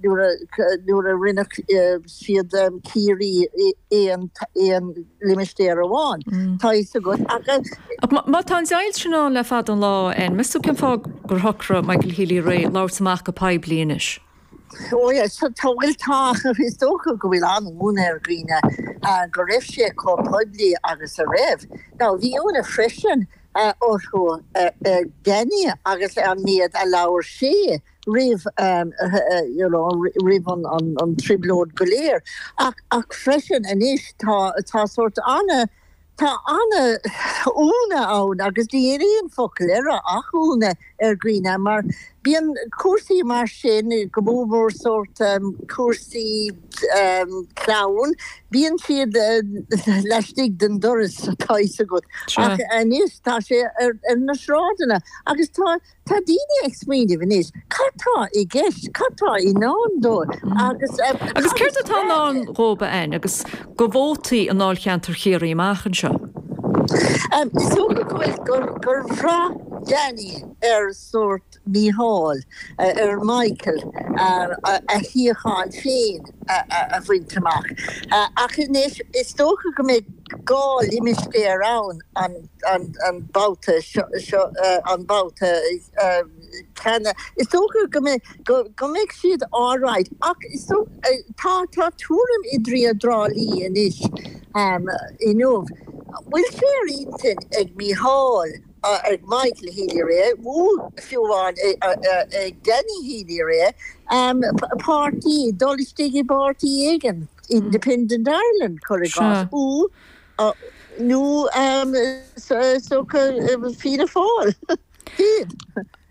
nuair a rinne siad Ciarraí aon limistéar amháin, tá a fhios agat, ach. Ach má tá an deighilt sin ann le fada an lá, an meas tú cén fáth gur shocraigh Michael Healy-Rae labhairt amach go poiblí anois? Ó yes, tá, bhuel tá, is dócha go bhfuil an-ionadh ar dhaoine go raibh sé chomh poiblí agus a raibh. Now, bhí ionadh freisin orthu ar Danny agus ar an méad a labhair sé. roimh roimh an trioblóid go léir ach ach freisin anois tá tá sórt ana tá an-ionadh ann agus níl aon focal air ach ionadh ar dhaoine mar bíonn cúrsaí mar sin go mór mór sórt cúrsaí clann bíonn siad laistigh den doras tá a fhios agat ach anois tá sé ar na sráideanna agus tá Tá daoine ag smaoineamh anois cad tá i gceist, cad tá i ndán dóibh agus céard atá i ndán dóibh a Áine agus do vótaí i ndáilcheantar Chiarraí amach anseo? Is dócha go bhfuil, gur bhraith Danny ar sórt Mícheál, ar Mhichael, a shuíochán féin a bhaint amach ach anois is dócha go mbeidh dhá limistéar ann, an. an babhta seo, an babhta cheana. Is dócha go mbeidh siad alright ach tá tuairim i dTriá dTrá Lí anois, inniu, bhfuil sé ar intinn ag Mícheál, ag Michael Healy-Rae, nó fiú amháin ag Danny Healy-Rae, páirtí, dul istigh i bpáirtí éigin, Independent Ireland, cuir i gcás, nó. nó is dócha Fianna Fáil féin.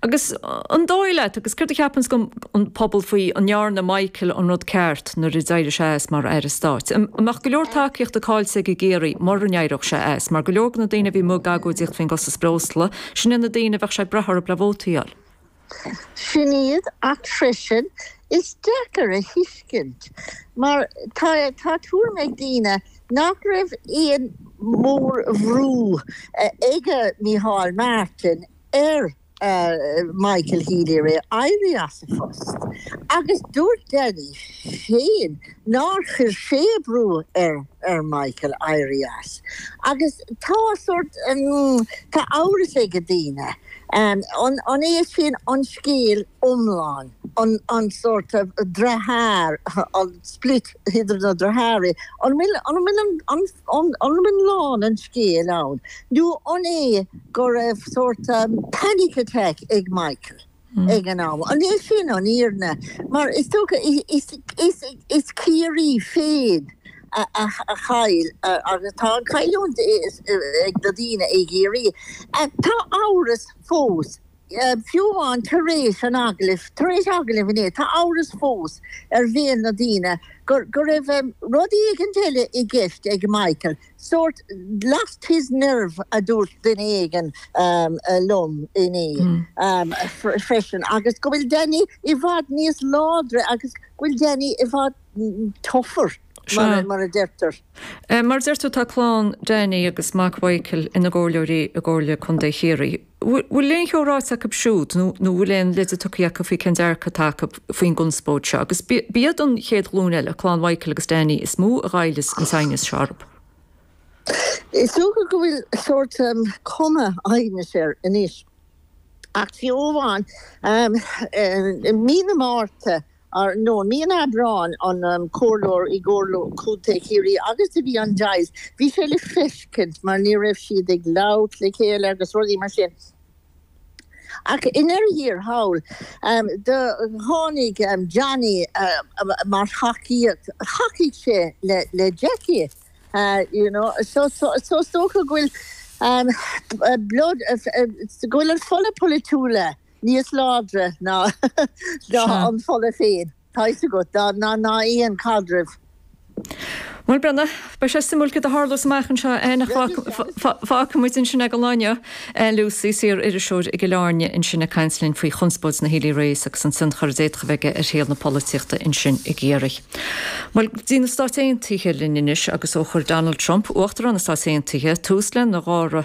Agus an dóigh leat, agus céard a cheapanns an pobal faoi, an ndearna Michael an rud ceart nuair a d'éirigh sé as mar Aire Stáit? An mbeadh go leor tacaíochta cáillte aige i gCiarraí mura n-éireodh sé as? Mar go leor de na daoine a bhí amuigh ag agóidíocht faoin gcostas breosla, sin iad na daoine a bheadh sé ag brath orthu le vótaí a fháil. Sin iad, ach freisin is deacair a thuiscint mar tá tá tuairim ag daoine nach raibh aon mhórbhrú aige Micheál Martin ar Michael Healy-Rae éirí as a phost agus dúirt Danny féin nár chuir sé brú ar Michael éirí as. Agus tá sórt, tá amhras aige daoine, an é sin an scéal iomlán, an sórt driotháir, an split idir na driotháirí, an bhfuil iomlán an scéil ann, nó an é go raibh sórt panic attack ag Michael? ag an am. An í sin an fhírinne? Mar is dócha is Ciarraí féin a chaill agus tá an chailliúint ag na daoine i gCiarraí. Tá amhras fós, fiú amháin tar éis an agallaimh, tar éis agallaimh inné, tá amhras fós ar bhéal na ndaoine go raibh rud éigin eile i gceist ag Michael. Sórt 'lost his nerve' a dúirt duine éigin liom inné freisin, agus go bhfuil Danny i bhfad níos láidre agus go bhfuil Danny i bhfad 'tougher', mar a deirtear. Mar a deir tú, tá clann Danny agus mac Mhichael ina gcomhairleoirí i gComhairle Contae Chiarraí. Bhfuil aon cheo ráite acu siúd nó an bhfuil aon leide tugtha acu faoi cén dearcadh atá acu faoin gconspóid seo? Agus b'iad an chéad ghlúin eile, clann Mhichael agus Danny, is mó a ghoilleas an t-aighneas seo orthu. Is dócha go bhfuil sórt cuma aighnis air anois. Ach fiú amháin, i mí na Márta nó mí an Aibreáin an comhairleoir i gComhairle Chontae Chiarraí agus a bhí an deighilt, bhí sé le feiscint mar ní raibh siad ag labhairt le chéile agus rudaí mar sin. Ach i ndeireadh thiar thall, do tháinig Johnny mar thacaíocht, thacaigh sé le Jackie, you know, so is dócha go bhfuil, go bhfuil an fola polaitiúla níos láidre ná an fola féin, tá a fhios agat, ná aon chaidreamh. Bhuel, breathnaigh, beidh sé suimiúil céard a tharlós amach anseo. An bhfágfaimid ansin é go lá, Anne Lucey, saoririseoir i gCill Airne ansin ag caint linn faoi chonspóid na Healy-Raes agus an tionchar a d'fhéadfadh a bheith aige ar shaol na polaitíochta ansin i gCiarraí. Bhuel, go dtí na Stáit Aontaithe linn anois agus ó chuir Donald Trump, Uachtarán na Stát Aontaithe, tús lena dhara,